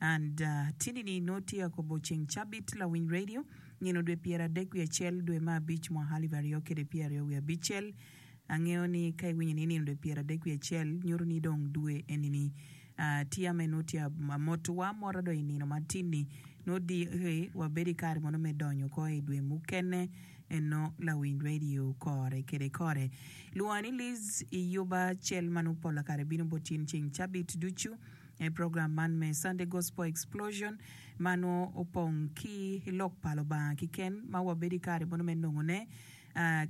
And tinini nongo tye akobo ceng cabit lawiny radio nino dwe pyer adek wiye acel dwe me abic mwaka alip aryo kede pyer aryo wiye abicel angeyo ni ka iwinyo ni nino dwe pyer adek wiye acel nyuto ni dong dwe enini tye ame nongo tye amoto wa amota dong inino ma tinni nongo diki wabedo ikare mono me donyo oko idwe mukene eno lawiny radio kore kede kore lwonga ni Liz iyuba cel manongo pola kare bino bot in ceng cabit ducu. I program man me Sunday Gospel Explosion ma nongo opong ki Lok pa Lubanga kiken ma wabedo i kare mono me nongone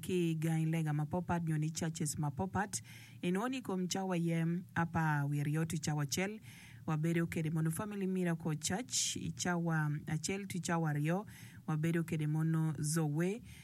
ki i gangi lega mapopat nyo ni churches mapopat, inongo ni i kom cawa aye apar wiye aryo to cawa acel wabedo kede mono Family Miracle Church, i cawa acel to cawa aryo wabedo kede mono Zoe.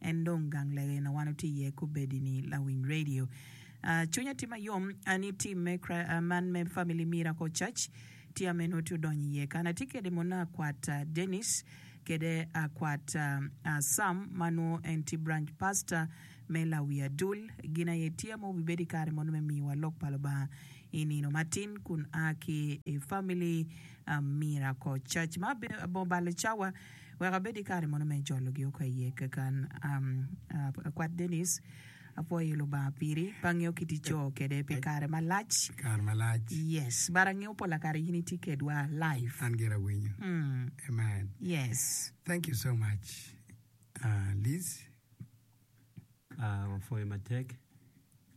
en dong gang lege na wan watye iye kubedi ni lawiny radio. Ah, cwinya tye mayom ah, ni team me Chri- ah, man me Family Miracle Church tye ah, meno tye odonyo iye kan atye kede mona akwat ah, Dennis kede akwat ah, ah, Sam ma nwo en tye branch pastor me Lawi Adul gin aye tye ah, ma wubibedi kare mono me miyowa lok pa Lubanga I nino matin kun a ki i Family Miracle Church ma bor balo cawa wek abed ki kare mono me jolo gi oko iye keken. Akwat Denis, apwoyo Lubanga piri, pe angeyo kit ico kede pi kare malac. Kare malac. Yes, but angeyo pola kare in itye kedwa live. An gira awinyo. Amen. Yes. Thank you so much Liz. uh, wapwoyo matek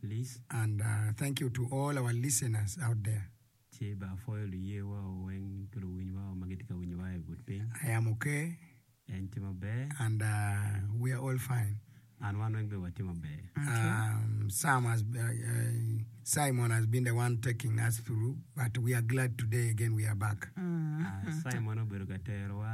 Liz. And uh, thank you to all our listeners out there. Ci ba apwoyo luye wa weng ki luwiny wa ma gitye ka winyo wa i but piny. I am okay. En tye maber. And uh, we are all fine. An wan weng be watye maber. Okay. Um, Sam has, uh, uh, Simon has been the one taking us through, but we are glad today again we are back. Mm. Uh, Simon obedo ka tero wa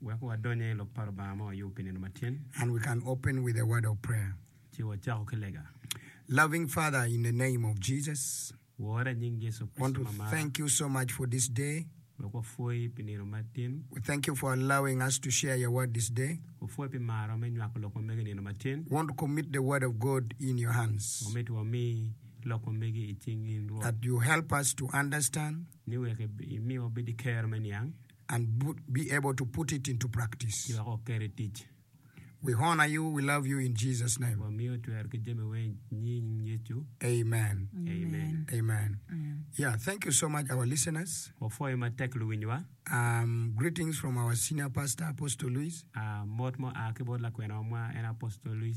Wek wadonye i lok pa Rubanga ma wayubo pi nino matin. And we can open with a word of prayer. Ci wacako ki lega. Loving Father in the name of Jesus. Wora i nying Yecu Kricito ma amaro. Want to thank you so much for this day. Wek wapwoyi pi nino matin. We thank you for allowing us to share your word this day. Wapwoyi pi maro me nywako lok ma megi i nino matin. Want to commit the word of God in your hands. Wamito wami lok ma megi i cing in Rwot. That you help us to understand. Ni wek imi wabed ki kero me niang. and be able to put it into practice. Ci wek oket i tic. We honor you, we love you in Jesus name. Wamiyo twer ki jami weng i nying Yecu. Amen. Amen. Amen. Yeah, thank you so much our listeners. Wapwoyo matek luwinywa. Um, greetings from our senior pastor Apostle Luis. Ah, mot mua ki bot lakwenawa mwa en Apostle Luis.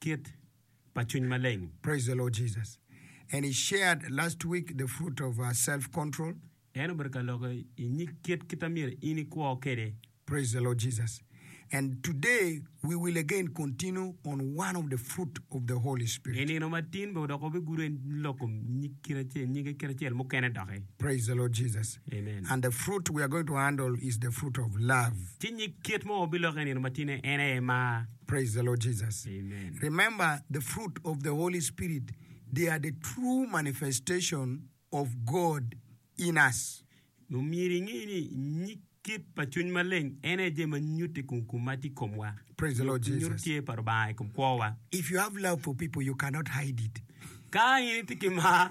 Kit pa cwiny maleng. Praise the Lord Jesus and he shared last week the fruit of self control. En obedo ka loko i nyig kit kit ma myero in ikwo kwede. Praise the Lord Jesus and today we will again continue on one of the fruit of the Holy Spirit. I nino ma tin bene dok wabigudo i loko nyig kit acel nyige kit acel mukene doki. Praise the Lord Jesus Amen. and the fruit we are going to handle is the fruit of love. Ci nyig kit ma wabiloko i nino ma tin-ni en aye mar. Praise the Lord Jesus. Amen. Remember, the fruit of the Holy Spirit, they are the true manifestation of God in us. Omyero inge ni nyig kit pa Cwiny Maleng en aye jami ma nyutte kun kun ma tye i komwa. Praise the Lord Nyuto Jesus. tye pa Lubanga i kom kwowa. If you have love for people, you cannot hide it. Ka in itye ki mar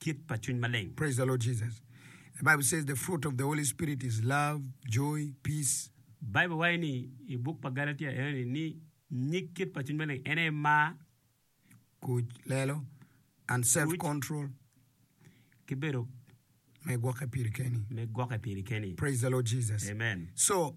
kit pa cwiny maleng. Praise the Lord Jesus. The Bible says the fruit of the Holy Spirit is love, joy, peace. Bible waco ni i buk pa Galatia enoni ni nyig kit pa cwiny maleng en aye mar, Kuc, lelo, and self Kuc. control, ki bedo me gwokke piri keni. me gwokke piri keni. Praise the Lord Jesus. Amen. So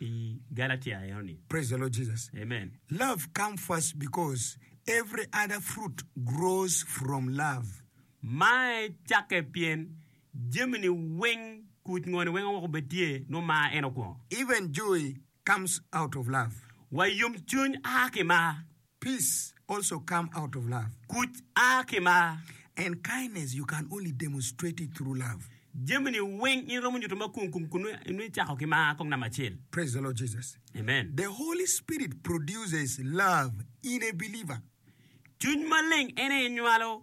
i Galatia enoni. Praise the Lord Jesus. Amen. Love come first because every other fruit grows from love. Mar cakke pien jami ni weng kuc ngo ni weng woko bed tye nwo mar en okwongo. Even joy comes out of love. Wa yom cwiny aa ki mar. Peace also come out of love. Kuc a ki mar. And kindness you can only demonstrate it through love. Jami ni weng in romo nyuto mar kong kun nongo icako ki mar kong namba acel. Praise the Lord Jesus. Amen. The Holy Spirit produces love in a believer. Cwiny maleng en aye nywalo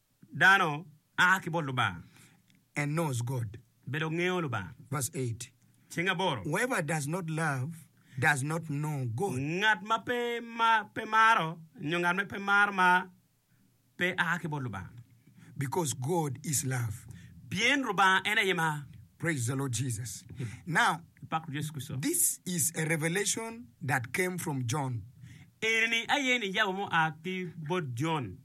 Dano a ki bot Lubanga. And knows God. Bedo ngeyo Lubanga. Verse 8. Ceng aboro. Whoever does not love does not know God. Ngat ma pe ma pe maro nyo ngat ma pe maro ma pe a ki bot Lubanga. Because God is love. Pien Lubanga en aye mar. Praise the Lord Jesus. Now, Pak Rwot Yecu Kricito. this is a revelation that came from John. Eni-ni aye nijabu mo a ki bot Jon.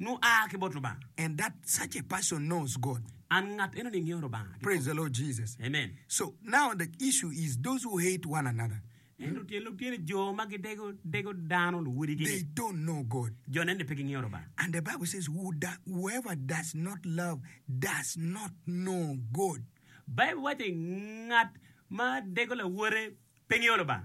nongo aa ki bot Lubanga. And that such a person knows God. And ngat eno ni ngeyo Lubanga ki kom. Praise the Lord Jesus. Amen. So now the issue is those who hate one another. Ento tyen lok tye ni jo ma gidego dego dano luwodigi They ni don't know God. jo neno ni pe gingeyo Lubanga. And the Bible says, Who do, whoever does not love does not know God. Baibul waco ni ngat ma dego lawote pe ngeyo Lubanga.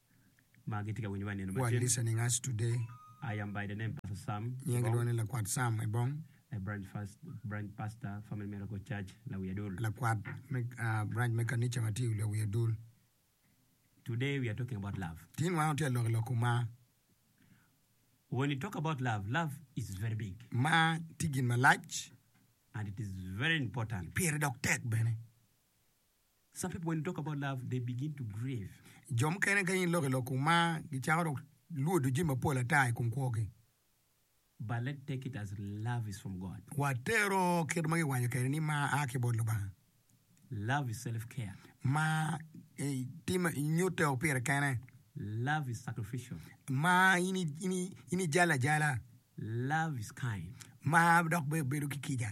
ma gitye ka winyo wa i nino What macen. listening us today? I am by the name Pastor Sam Nyingi Ebong, lwongo ni Lakwat Sam Ebong, a branch, first, branch pastor, Family Miracle Church, Lawi Adul. lakwat me ah, branch me kanica ma tye i Lawi Adul. Today we are talking about love. Tin wan watye ka lok i lok kom mar. When you talk about love, love is very big Mar tye gin malac, and it is very important. pire dok tek bene. Some people when you talk about love they begin to grieve. Jo mukene ka in iloko i lok kun mar gicako dok lwodo jami mapol ata i kom kwogi. But let's take it as love is from God. Watero kit ma giwanyo kwede ni mar a ki bot Lubanga. Love is self care. Mar eh, tim nyutte woko pire kene. Love is sacrificial. Mar in i- in i- in ijale ajala. Love is kind. Mar dok be bedo ki kica.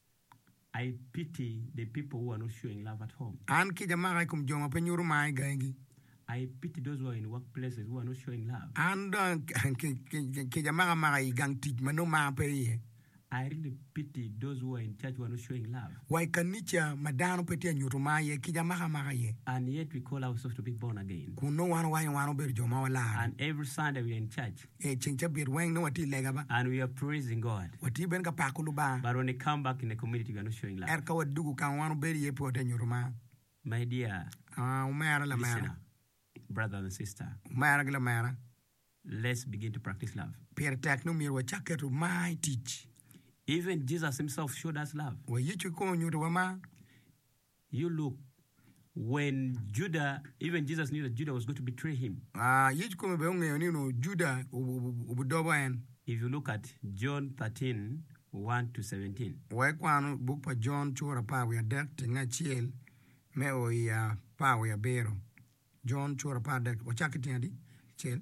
I pity the people who are not showing love at home. An kica maka i kom jo ma pe nyuto mar i gangigi. I pity those who are in workplaces who are not showing love. An dong kica maka maka i gang tic ma nongo mar pe iye. I really pity those who are in church who are not showing love. Wa i kanica ma dano pe tye ka nyuto mar iye, kica maka maka iye. And yet we call ourselves to be born again. Kun nongo wan owaco wan obedo jo ma walarre. And every Sunday we are in church. I ceng cabit weng nongo watye i lega ba. And we are praising God. Watye bene ka pako Lubanga. But when we come back in the community we are not showing love. Ento ka wadugu kama wan wabedo iye pe watye nyuto mar. My dear. Ah, omera lamera. Listener, brother and sister. Omera ki lamera. Let's begin to practice love. Pire tek ni myero wacak keto mar i tic. Even Jesus himself showed us love. Wa Yecu kong onyuto wa mar. You look, when Juda, even Jesus knew that Juda was going to betray him. Ah, yec kome bene ongeyo ni onongo Juda obidobo en. If you look at John 13, 1 to 17. Wa ikwan buk pa Jon cura apar wiye adek tenge acel me o i apar wiye abiro. Jon cura apar dek, wacak ki tenge adi? Acel.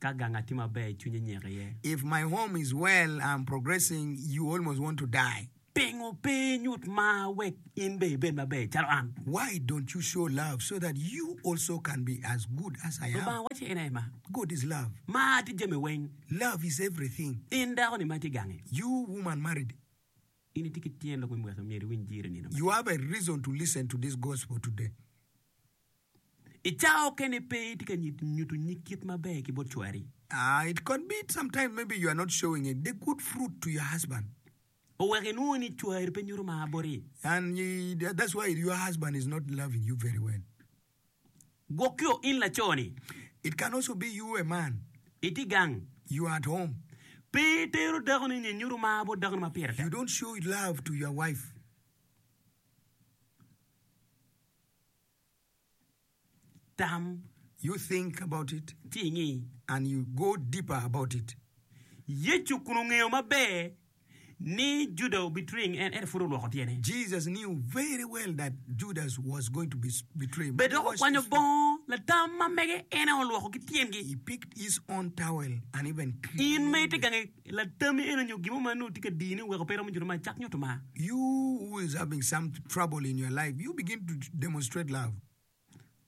Ka ganga tye maber, cwinye nyeko iye. If my home is well, I'm progressing, you almost want to die. Pingo pe inyut mar wek in bene ibed maber calo an? Why don't you show love so that you also can be as good as I am? Lubanga wacci en aye mar. God is love. Mar tye jami weng. Love is everything. In dako-ni ma itye gange. You woman married. In itye ki tyen lok me mwaki, myero iwiny jiri nino man. You have a reason to listen to this gospel today. I cawa okene pe itye ka nyuto nyig kit maber ki bot cwari. It could be sometimes maybe you are not showing it the good fruit to your husband. Oweko inwongo ni cwari pe nyuto mar boti. And that's why your husband is not loving you very well. Gwokio in laco ni. It can also be you a man. Itye gang. You are at home. Pe itero dako ni nyi nyuto mar bot dako ni ma pire tek. You don't show love to your wife. Tam, you think about it, ci ingi, and you go deeper about it. Yecu kun ongeyo maber ni Juda obitwing en, ento pud olwoko tyene. Jesus knew very well that Judas was going to be betray him. Bed dok okwanyo bongo latam ma mege en aye olwoko ki tyengi. He picked his own towel and even cleaned it. In ma itye gange. I latam-mi eno nyo gin mo ma nongo tye ka dini oweko pe iromo nyuto mar, cak nyuto mar. You who is having some trouble in your life, you begin to demonstrate love.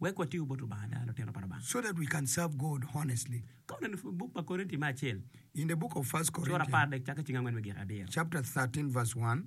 Wek watigo bot Lubanga ada, lutino pa Lubanga. So that we can serve God honestly. Ka waneno i buk pa Korinti me acel. In the book of First Corinthians. Cura apar dek cakke cing angwen me gik adyero. Chapter thirteen verse one.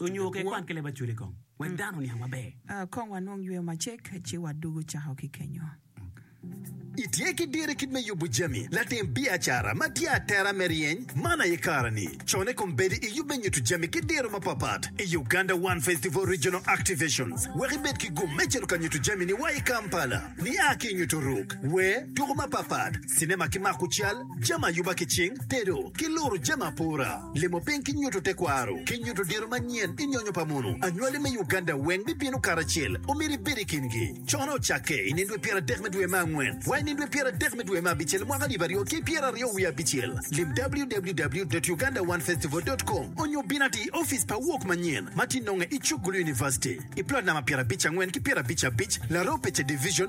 Onyo ke kwan ki leb acwele kong, wek dano oniang maber. Kong wanong yweyo macek, ci wadugu cako ki kenyo. Itye ki diro kit me yubu jami latim biacara ma tye atera me ryeny man aye kare ni. Cone kong bedi iyub me nyutu jami ki diro mapapat i Uganda One Festival Regional Activations wek ibed ki gum me cito ka nyutu jami ni wa i Kampala. Ni a ki nyutu ruk, wer, tuku mapapat, Cinema ki mako cal, jami ayuba ki cing, tedo, ki luro jami apora, limo piny ki nyuto tekwaro, ki nyuto diro manyen i nyonyo pa mono. Anywali me Uganda weng bibino karacel, omyero ibed i kingi. Cone ocakke i nino dwe pyera dek me dwe me angwen wa i nino dwe pyera dek me dwe me abicel mwaka alip aryo ki pyera aryo wiye abicel. Lim www.ugandaonefestival.com onyo bin ati i ofice pa Walk manyen ma ti nonge i Chukgulu University i plot namba pyera abic angwen ki pyera abic abic Laropeche Division,